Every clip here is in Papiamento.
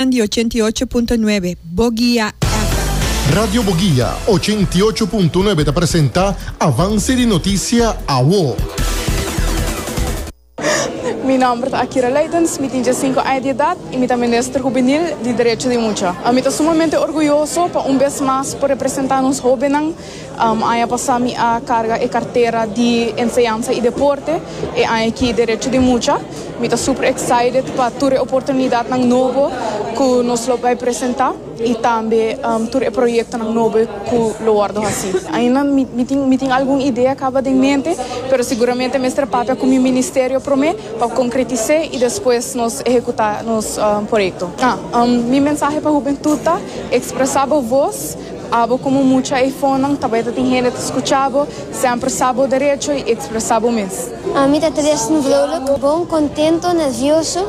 Nan di ochenta i ocho punto nuebe, Bogia FM. Radio Bogia ochenta i ocho punto nuebe ta presenta Avance di Noticia Awo. Mi nomber ta Akira Leydens, mi tin diasinco aña di edad y mi ta Minister Hubenil di Derecho di Mucha. Mi ta sumamente orguyoso pa un bes mas por representa nos hobennan. Aña pasá mi a karga e kartera di Enseñansa i Deporte, e aña aki Derecho di Mucha. Mi ta super excited pa tur e oportunidatnan nobo ku nos lo bai presentá i tambe tur e proyektonan nobo ku lo wòrdu hasí. Ainda mi tin algun idea kaba den mente, pero siguramente mester a papia ku mi ministerio promé pa konkretis'é i despues nos ehekutá nos proyekto. Mi mensahe pa hubentut ta, Ekspresá bo vos. Abo komo mucha ei fonan tabata tin hende ta skucha bo, semper sa bo derecho i ekspresá bo mes. Ami ta tres no vrouwlik, bon, kontento, nervioso.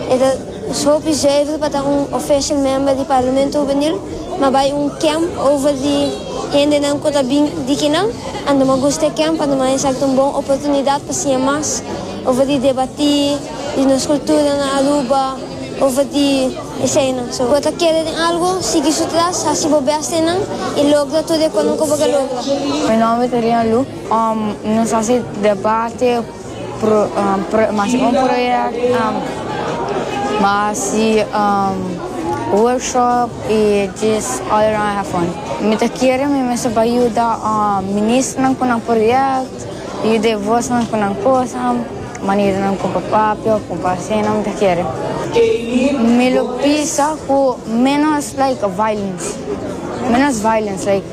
E ta hopi zuiver pa ta un official member di Parlamento Hubenil, ma bai un kemp over di hendenan ku ta bin di kinan. Anto mi a gusta e kemp, anto mi a hesa ku ta un bon oportunidat pa siña mas over di debatí. di nos kultura na Aruba of di eseinan. So, bo ta kere den algu, sigui su tras, hasi bo bes den nan i logra tur e konan ku bo ke logra. Mi nòmber ta Rina Lu. Nos hasi debate, mas un proyèkt, mi hasi workshop i just all around have fun. Mi ta kere mi mester bai yuda ministernan ku nan proyèkt, yuda e vosnan ku nan kosnan. Manera nan kumpa papia of kumpa asina mi ta kere. Mi lo pisa ku menos like violence, menos violence like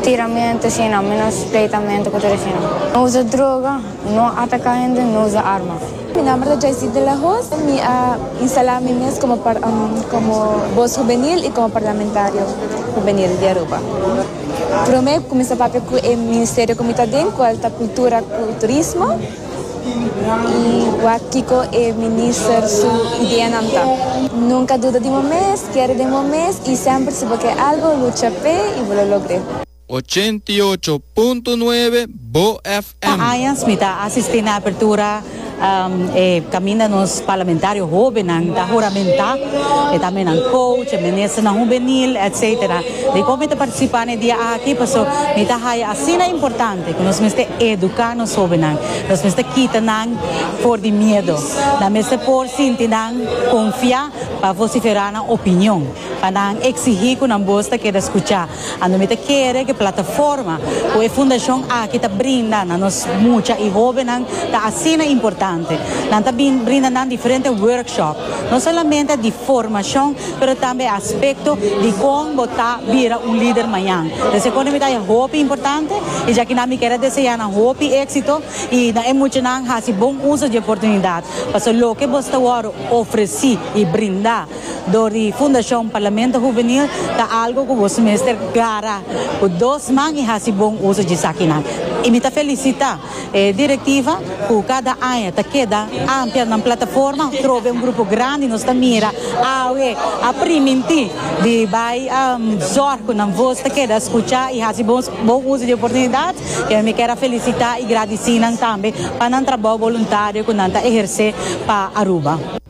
tiramentu asina, menos pleitamentu ku tur asina. No usa droga, no ataka hende, no usa arma. Mi nomber ta Jaycee de la Hoz. Mi a instala mi mes komo komo Bos Hubenil i komo Parlamentario Hubenil di Aruba. Prome mi kuminsá papia ku e ministerio ku mi ta den, kual ta Kultura ku Turismo. Y wak kiko e minister su ideanan ta. Nunca duda di bo mes, kere den bo mes y semper si bo ke algo lucha pe y bo lo logr'e. Ochenta i ocho punto nuebe Bo FM. Pa añas mi ta asisti na apertura e caminda nos parlamentario hobennan ta huramenta, e ta menan coach, e ministernan hubenil, etcetera. Dikon mi ta participa n'e dia aki paso mi ta haya asina importante. Ku nos mester eduká nos hóbennan. Nos mester kita nan for di miedo. Nan mester por sinti nan konfiá pa vosiferá nan opinion, pa nan eksigí ku nan bos ta keda skuchá. Anto mi ta kere ku e plataforma ku e fundashon aki ta brinda na nos mucha i hóbennan ta asina importante. Nan ta brinda nan diferente workshop. No solamente di formacion pero tambe aspecto di con bo ta bira un lider mañan. Ta seco nan mita e hopi importante y ya kinan mi kier a desea nan hopi exito y na e muchanan haci bon uso di e oportunidad. Pasobra loke bo sta wor ofreci y brinda door di Fundacion Parlamento Juvenil ta algo cu boso mester clara cu dos man y haci bon uso di esakinan. Y mi ta felicita. E Directiva cu cada aña ta keda ampia nan plataforma trobe un grupo grandi nos ta mira awe a priminti di bay zorg cu nan voz ta keda scucha y haci bon uzo di e oportunidad y awe mi kier a felicita y gradici nan tambe pa nan trabao voluntario cu nan ta eherce pa Aruba.